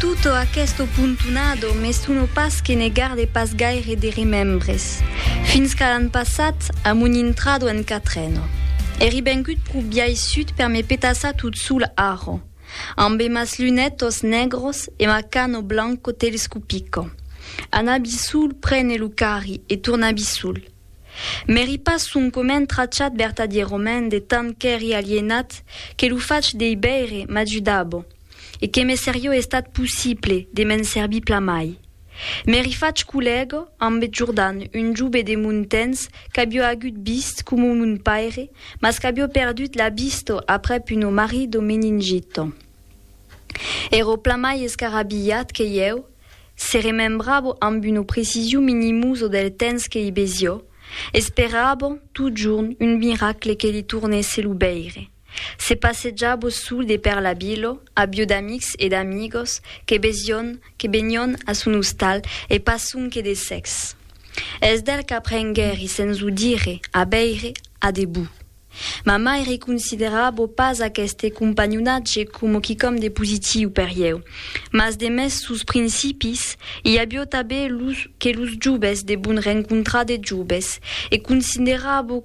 Tutto aquesto puntonado me sono pas que ne garde pas gaire de remembres, fins qu'a l'an passat, a mon intrado en Catreno. Eri vengut pro biais sud per me petassar tot sol arro, ambe mas lunetos negros e ma cano blanco telescopico. Anabi sol prene lo carri e tornabi sol. M'eri pas soncomènt trachat vertadièrament de tant qu'eri alienat que lo fach dei veire m'ajudabo. e que me serió estat possible de m'en servir plamai. M'èri fach collèga ambe Jordan, un jove de mon temps qu'avió agut vist coma mon paire, mas qu'avió perdut la vista aprèp una marri de meningita. Èra plamai escarabilhat que ieu, se remembrava ambe una precision minimosa del temps que i vesió, esperava totjorn un miracle que li tornèsse lo veire. Se passejabo sul de per la vilo, abiu d'amics e d'amigos que besion, que benion a son ostal e pas sonque de sex. Es d'el qu'aprenguèri sens o dire a veire a debut. Ma mai reconsiderabo pas aqueste companhonatge coma quicòm de positiu per ieu, mas de mès sus principis, i abiu tabé los que los joves debon rencontrar de joves e considerabo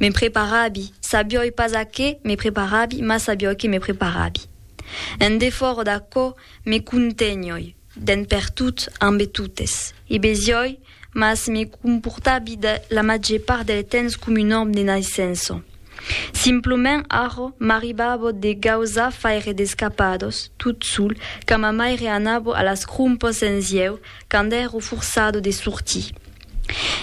Me preparabi, sabioi pas a qué me preparabi, mas sabioi que me preparabi. En defòra d'aquò, me contenioi, d'en pertot, ambe totes. I besioi, mas me comportabi de la màger part del temps com un òme de naissença. Simplement arrò m'arribava de gausar faire d'escapados, tot sol, quand ma maire anava a las crompas en sieu, quand èrò forçado de sortir.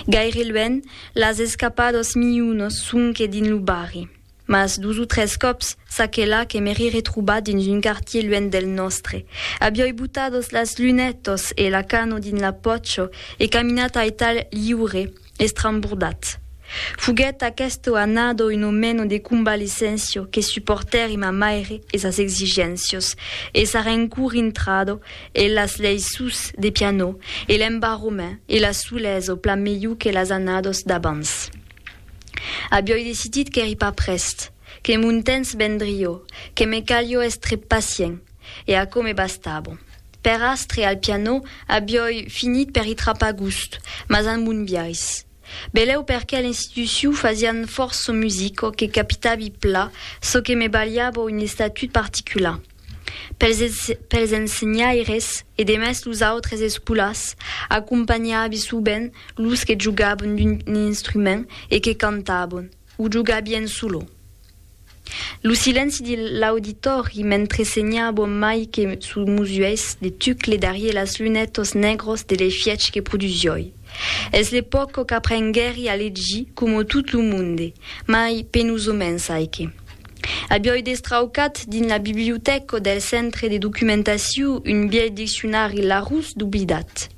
Gaire luènh, las escapados miunos sonque dins lo barri, mas dos o tres còps, ça que là, que m'èri retrobat dins un quartier luènh del nòstre, avioi botados las lunètos e la cano dins la pòcho e caminat aital liure, Estrambordat. Foguèt aqueth o anado un o meno de convalescéncia que supòrtèri ma maire e sas exigéncias, e sa rencour intrada e las leis sus de pianò, e l'embarrament e la solesa plan melhor que las anadas d'abans. Avioi decidit qu'èri pas prèst, que mon temps vendrió, que me calió èstre pacient, e aquò me bastava. Per astre al pianò abiòi finit per i trapar gust, mas an bon biais. Belèu perqué l'institucion fasián fòrt son musico que capitavi pla çò que me balhava un estatut particular. Pels pels ensenhaires e demest los autres escolars acompanhavi sovent los que jogavan d'un instrument e que cantavan. O jogar bien solo. Lo silenci de l'auditòri mentre senha bon mai que sos musuèis de tucle darrier las lunètos negros de l'efièch que produsioi. Es le pòco qu'aprenguèri a legir coma tot lo monde, mai penusomens aique. Abioi destraucat dins la bibliotèco del Centre de Documentaciu un bièlh diccionari Larousse doblidat.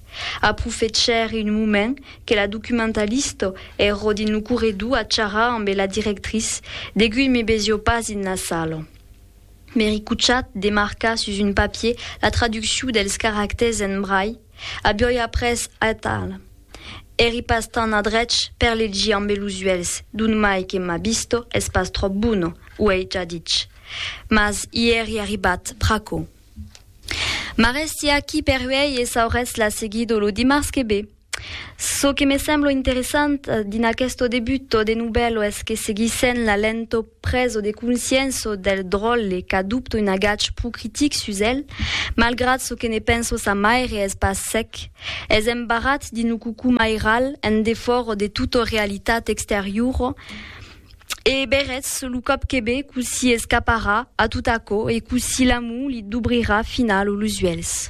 Aprofechèr un moment que la documentalista èrò dins lo corredor a charrar ambe la directrice, deguí me vesió pas dins la sala. M'èri cochat de marcar sus un papier la traduccion dels caractèrs en braille, aviòi après atal. Èri pas tant adrech per legir ambe los uèlhs, d'ont mai que ma vista es pas tròp bona, uèi ja dich. Mas i èri arribat pr'aquò. M'a resti aquí per uèi e sauretz la seguido lo dimars que ve. Çò que me semblo interessant dins aquesto debutto de novèlo es que seguissent la lento preso de conscienço del dròlle qu'adopto un agach pro critic sus el, malgrat çò que ne penso sa maire es pas sec, es embarrat dins lo cocomairal en defòro de tota realitat exteriora, E berretz lo còp que be cossí escaparà a tot aquò e cossí l'amor li dubrirà final los uèlhs.